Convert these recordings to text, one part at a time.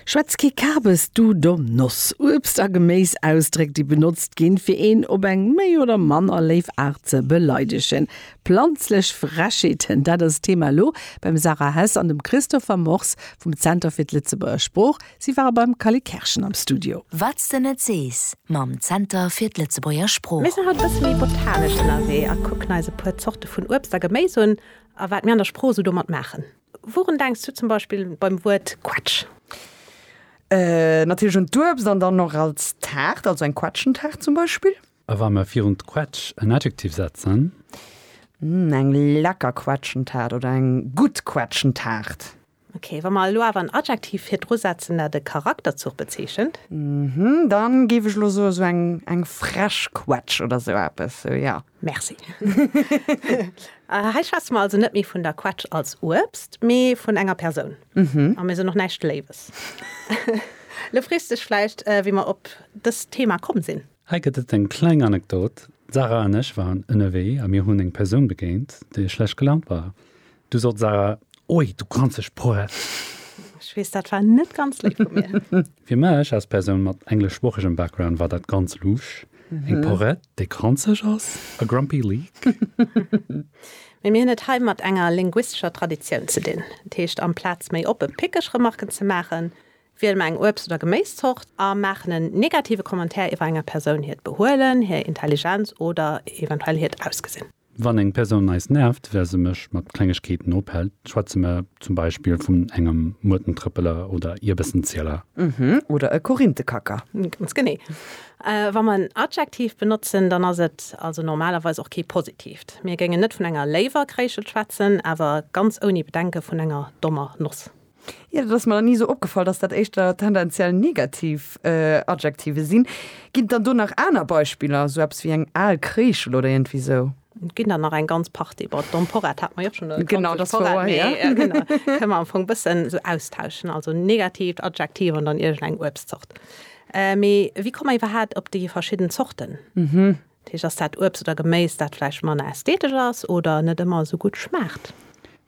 Schwätz kee Kabes, du domm Noss! Uebst a Geméis, Ausdréck, déi benotzt ginn, fir een op eng méi oder manner léif Aart ze beleidegen. Planzlech Frechheeten, dat ass d'Thema elo beim Sarah Hess an dem Christopher Mors vum Zenter fir d'Lëtzebuerger Sprooch. Si ware beim Kalle Kerschen am Studio. Wat s de net sees mam Zenter fir d'Lëtzebuerger Mir Sprooch. sinn haut e bësse méi botanisch ënnerwee a kucken eis e puer Zorte vun Uebst a Geméis un a wat mir an der Sprooch esou domat maachen. Wouren denks du zum Beispill beim Wuert Quetsch? Natierlech un d'Uebst an dann och als Taart, also eng Quetschentaart zum Beispill. A wa mer virun d'Quetsch en Adjektiv setzen? Eng lecker Quetschentaart oder eng gutt Quetschentaart. Ok, wa mer elo awer en Adjektiv virdru setzen, dat e Charakterzuch bezeechent? Dann géif ech elo soen, esou eng frech Quetsch oder esou eppes, sou, jo. Merci. Hei schwätze mer also net méi vun der Quetsch als Uebst, mee vun enger Persoun. A mir sinn och näischt Léiwes. Lo frees du dech vläicht, wéi mer op dëst Thema komm sinn. Hei gëtt et eng kleng Anekdot, D'Sarah an ech waren ënnerwee a mir hunn eng Persoun begéint, déi schlecht gelaunt war. Du sot Sarah, Oi, du granzeg Sproat! Ech weess, dat war net ganz léif vu mir. Fir mech als Persoun mat engleschsproochegem Background war dat ganz luusch, eng Porett, déi granzeg ass, a grumpy leak. Mee mir hunn et hei mat enger linguistescher Traditioun ze dinn. Dat heescht, amplaz méi oppe pickeg Remarken ze maachen, wiele mer eng Uebst oder Geméiszort a maachen en negative Commentaire iwwer enger Persoun hiert Behuelen, hir Intelligenz oder eventuell hiert Ausgesinn. Wann eng Persoun eis nervt, well se mech mat Klengegkeeten ophält, schwätze mer zum Beispill vun engem Muertentrëppeler oder Ierbessenzieler. Mhm, oder e Korinthekacker. Ganz genee. Wa mer en Adjektiv benotzen, dann ass et also normalerweis och kee positiivt. Mir géingen net vun enger léiwer Kréischel schwätzen, awer ganz ouni Bedenke vun enger dommer Noss. Jo, dat ass mer nach ni esou opgefall, dass dat éischter tendenziell negativ Adjektive sinn. Ginn et dann do nach aner Beispiller, esou eppes wéi eng al Kreeschel oder iergendwéi esou? Et ginn der nach eng ganz Partie. Bon, d'Emporrad hat mer jo schonn. Genau, dat ass wouer, jo. Kënne mer am Fong e bëssen esou austauschen, also en negativt Adjektiv an dann iergendeng Uebstzort. Mee wéi komme mer iwwerhaapt op déi verschidden Zorten? Dat heescht, ass dat Uebst oder Geméis, dat vläicht manner ästhetesch ass oder net ëmmer esou gutt schmaacht?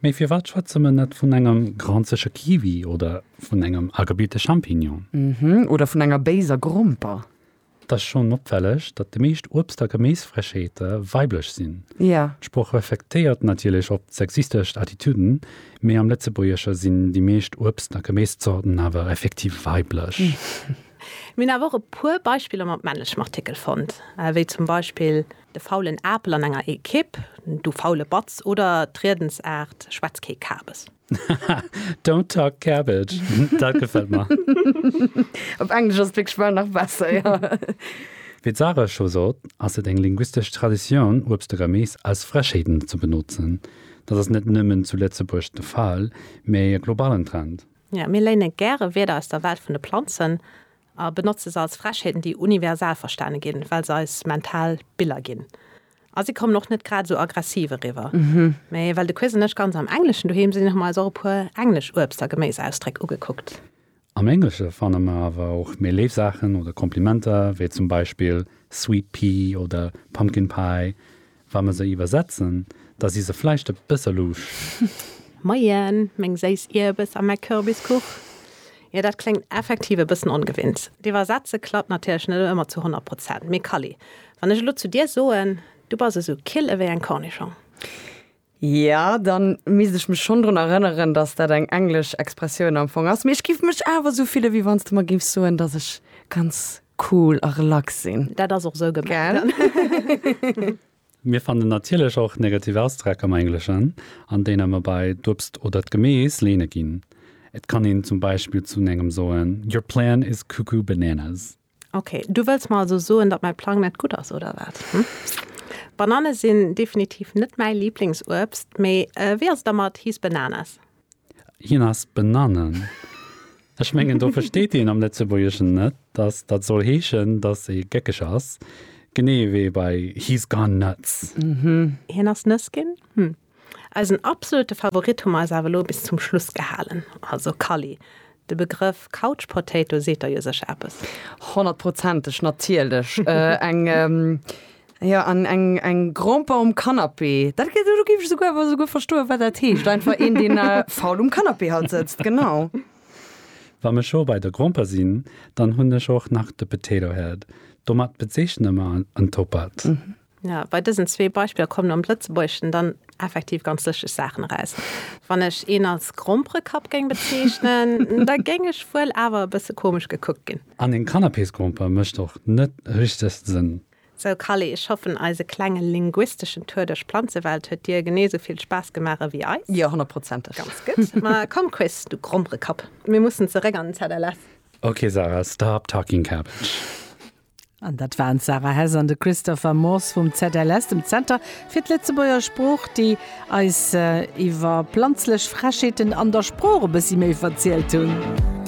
Mee firwat schwätze mer net vun engem granzege Kiwi oder vun engem agebilte Champignon? Oder vun enger béiser Gromper? Et ass schonn opfälleg, datt déi meescht Uebst a Geméisfrechheete weiblech sinn. D'Sprooch reflektéiert natierlech op d'sexistesch Attitüden, mee am Lëtzebuergesche sinn déi meescht Uebst a Geméiszorten awer effektiv weiblech. Mir hunn awer och e puer Beispiller mat männlechem Artikel fonnt, wéi zum Beispill de faulen Apel an enger Ekipp, du faule Batz oder d'Riedensaart schwätz kee Kabes. Haha, don't talk cabbage, dat gefält mer. Op Englesch ass et wierklech bal nach besser, jo. Wéi d'Sarah scho sot, ass et eng linguistesch Traditioun, Uebst a Geméis als Frechheeten ze benotzen. Dat ass net nëmmen zu Lëtzebuerg de Fall, mee e globalen Trend. Jo, mir léine gäre Wierder aus der Welt vun de Planzen a benotze se als Frechheeten, déi universal verstane ginn, well se eis mental Biller ginn. A si kommen och net grad esou aggressiv eriwwer. Mee well de Quiz an ech ganz am Engleschen doheem sinn, hu mer eis och e puer englesch Uebst a Geméisausdréck ugekuckt. Am Englesche fanne mer awer och méi léif Saachen oder Komplimenter, wéi zum Beispill sweet pea oder pumpkin pie. Wa mer se iwwersetzen, da si se vläicht e bësse louche. Moien, meng séiss Ierbes a mäi Kürbiskuch. Jo, dat kléngt effektiv e bëssen ongewinnt. D'Iwwersetze klappt natierlech net ëmmer zu honnert Prozent. Mee Kally, wann ech elo zu dir soen, Du bass esou kil ewéi eng Cornischong. Ja, dann misst ech mech schonn drun erënneren, dass dat eng englesch Expressioun am Fong ass. Mee ech giff mech awer esou fillen, wéi wann s de mer géifs soen, dass ech ganz cool a relax sinn. Dat ass och esou gemengt. Mir fannen natierlech och negativ Ausdreck am Engleschen, an deene mer bei d'Uebst oder d'Gemees leene ginn. Et kann een zum Beispill zu engem soen, Your plan is cuckoo bananas. Ok, du wëlls mer also soen, datt mäi Plang net gutt ass, oder wat? Banane sinn definitiv net mäi Liblingsuebst, mee wéi ass et da mat He's bananas? Hien ass Bananen. Ech mengen, do versteet een am Lëtzebuergeschen net, datt dat soll heeschen, datt ee géckeg ass, genee ewéi bei He's gone nuts. Hien ass nëss ginn? Hm. Eisen absolute Favorit hu mer eis awer elo bis zum Schluss gehalen, also Kally. De Begrëff Couch Potato seet der jo sécher eppes. Honnertprozenteg, natierlech. Eng, jo, an eng, eng Gromper um Canapé. Dat gëtt, do géif ech esouguer awer esouguer verstoen, wat dat heescht, einfach een, deen faul um Canapé halt sëtzt, genau. Wa mer scho bei der Gromper sinn, dann hunn ech och nach de Potato Head. Domat bezeechne mer en Toppert. Ja, bei dësen zwee Beispiller kommen am Lëtzebuergeschen dann effektiv ganz lëschteg Saachen eraus. Wann ech een als Grompere-Kapp géing bezeechnen, da géing ech wuel awer e bësse komesch gekuckt ginn. An en Canapésgromper mécht och net richteg Sënn. Sou Kally, ech hoffen eise klenge linguisteschen Tour duerch d'Planzewelt huet dir genee sou vill Spaass gemaach ewéi eis. Jo, honnertprozenteg. Ganz gutt. Ma komm Chris, du Grompere-Kapp, mir mussen zeréck an den ZLF. Ok Sarah, stop talking cabbage. An dat waren d'Sarah Hess an de Christopher Morse vum ZLS, dem Zenter fir d'Lëtzebuerger Sprooch, déi eis iwwer planzlech Frechheeten an der Sprooch e bëssi méi verzielt hunn.